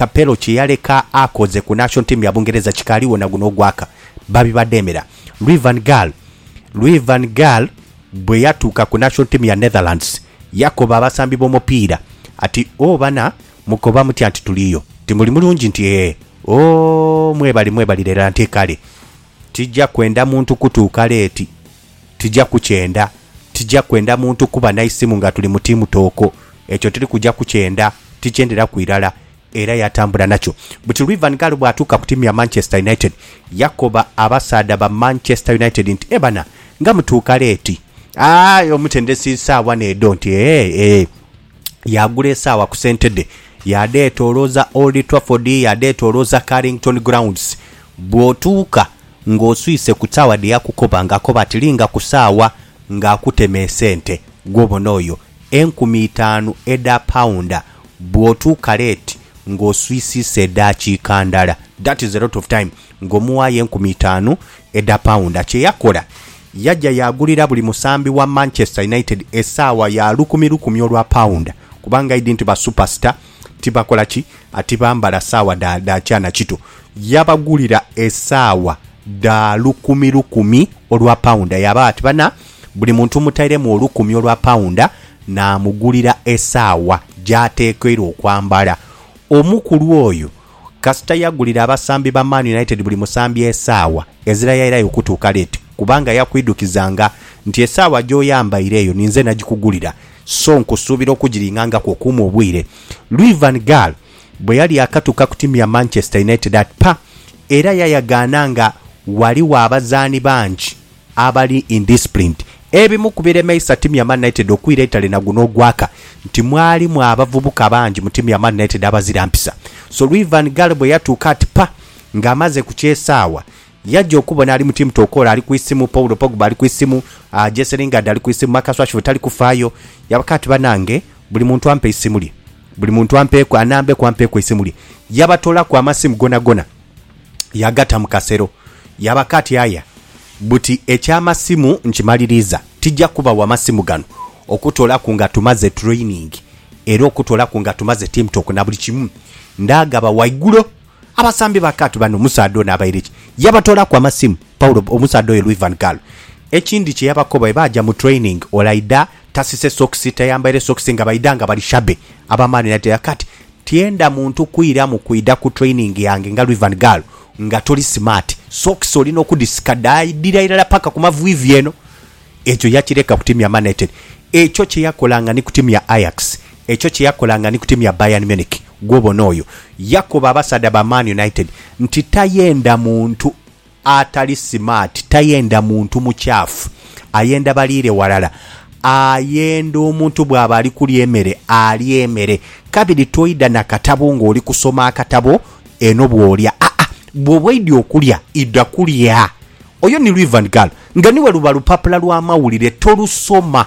Capello kye yaleka akoze ku national team ya Bungereza kikaligho na guno ogwaka. Babi badheemera. Louis van Gaal Louis van Gaal bwe yatuuka ku national team ya Netherlands, yakoba abasambi b'omupiira ati, Oh bana, mukoba mutya nti tuliyo? Timuli mulungi nti ee? Oh, mwebali, mwebali lera nti kale. Tija kwenda muntu kutuuka leeti. Tija kukyenda. Tija kwenda muntu kuba na isimu nga tuli mu tiimu tooko. Ekyo tiri kuja kukyenda. Tikyenderaku irala. Era yatambula nakyo. Buti lwi Van Gaal bwatuuka ku tiimu ya Manchester United, yakoba abasaadha ba Manchester United nti, E bana, nga mutuuka leeti. Aye omutendesi saagha n'edho nti, Eeh, eeh. yaagula esaawa ku sente dhe, yaadheetoolooza Old Trafford, yaadheetoolooza Carrington Grounds. Bw'otuuka ng'oswise ku saawa dhe yakukoba ng'akoba ati linga ku saawa ng'akutema esente, gw'obona oyo. Enkumi itaanu edha paunda bw'otuuka leeti ng'oswisiisa edaakiika ndala. That is a lot of time. ng'omuwaayo enkumi itaanu edha paunda. Kye yakola, yaja yaagulira buli musambi wa Manchester United esaawa ya lukumi lukumi olwa paunda, kubanga aidhi nti basuperstar tibakola ki? Tibambala saawa dha, dha kya na kito. Yabagulira esaawa dha lukumi lukumi olwa paunda. Yaabagho ati, Bana, buli muntu mmutairemu olukumi olwa paunda, naamugulira esaawa gy'atekeirwa okwambala. Omukulu oyo. Kasita yagulira abasambi ba Man United buli musambi esaawa ezira yairayo okutuuka leeti kubanga yakwidhukizanga nti esaawa gy'oyambaire eyo ninze nagikugulira so nkusuubira okugiringangaku okuume obwire. Louis van Gaal bwe yali yaakatuuka ku tiimu ya Manchester United, atpa era yayagaana nga ghaligho abazaani bangi abali indisciplined. Ebimu ku biremeisa tiimu ya Man United okwira eitale na guno ogwaka nti mwalimu abavubuka bangi mu tiimu ya Man United abazira mpisa. Sir Ivan Ghale bwe yatuuka ati pa nga amaze ku ky'esaawa, yaja okubona ali mu tiimu Tokolo ali ku isimu, Paul Pogba ali ku isimu, Jesse Lingard ali ku isimu, Marcus Rashford tali kufaayo. Yabaka ati banange buli muntu ampe eisimu lye, buli muntu ampeeku, anambeku ampeeku eisimu lye. Yabatoolaku amasimu gonagona. yagata mu kasero. Yaba kati aya buti eky'amasimu nkimaliriza. Tija kubawa masimu gano okutoolaku nga tumaze training era okutoolaku nga tumaze team talk na buli kimu. Ndaagaba waigulo. Abasambi ba kati bano omusaadha ono abaire ki? Yabatoolaku amasimu Paulo, omusaadha oyo Luis van Gaal. Ekindi kye yabakoba bwe baaja mu training olaidha tasise sokisi, tayambaire sokisi nga baidha nga bali shabby aba Man United. Yaba kati Tyenda muntu kwiramu kwidha ku training yange nga Rivan Gal nga toli smart. Socks olina okudhisika dhaidhira irala paka ku maviivi eno. Ekyo yakireka ku tiimu ya Man Utd. Ekyo kye yakolanga ni ku tiimu ya Ajax. Ekyo kye yakolanga ni ku tiimu ya Bayern Munich. Gwobona oyo. Yakoba abasaadha ba Man United nti tayenda muntu. Atali simaati tayenda muntu mukyafu, ayenda baliire walala. Ayenda omuntu bw'aba ali kulya emere alye emere. Kabiri toidha na katabo ng'oli kusoma akatabo eno bw'olya. Aa, bw'oba oidhi okulya, idha kulya. Oyo ni Luivan Gal. Nga niwe luba lupapula lw'amawulire, tolusoma.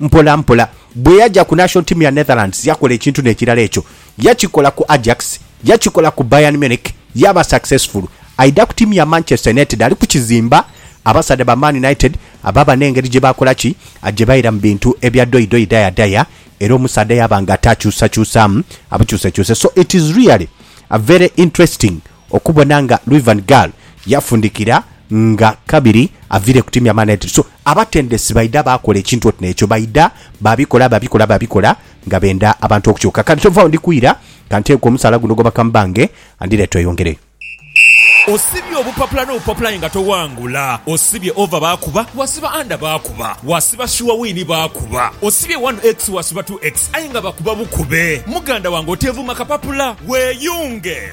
Mpola mpola, bwe yaja ku national team ya Netherlands yakola ekintu n'ekirala ekyo. Yakikola ku Ajax, yakikola ku Bayern Munich, yaaba successful. Aidha ku tiimu ya Manchester United ali kukizimba. Abasaadha ba Man United baba n'engeri gye bakola ki? Gye baira mu bintu ebya doidoi daya daya era omusaadha yaaba nga atakyusakyusaamu abukyusekyuse. So it is really very interesting. Okubona nga Louis van Gaal yafundikira nga kabiri aviire ku tiimu ya Man United. So, abatendesi baidha baakola ekintu oti n'ekyo. Baidha babikola, babikola, babikola nga benda abantu okukyuka. Kati tova agho ndi kwira, ka nteeke omusaala guno ogw'obubaka mu bbange and then tweyongereyo. Osibye obupapula n'obupapula aye nga towangula. Osibye over baakuba, wasiba under baakuba. Wasiba sure win baakuba. Osibye one X wasiba two X aye nga bakuba bukube. Muganda wange oteevuma kapapula, weeyunge!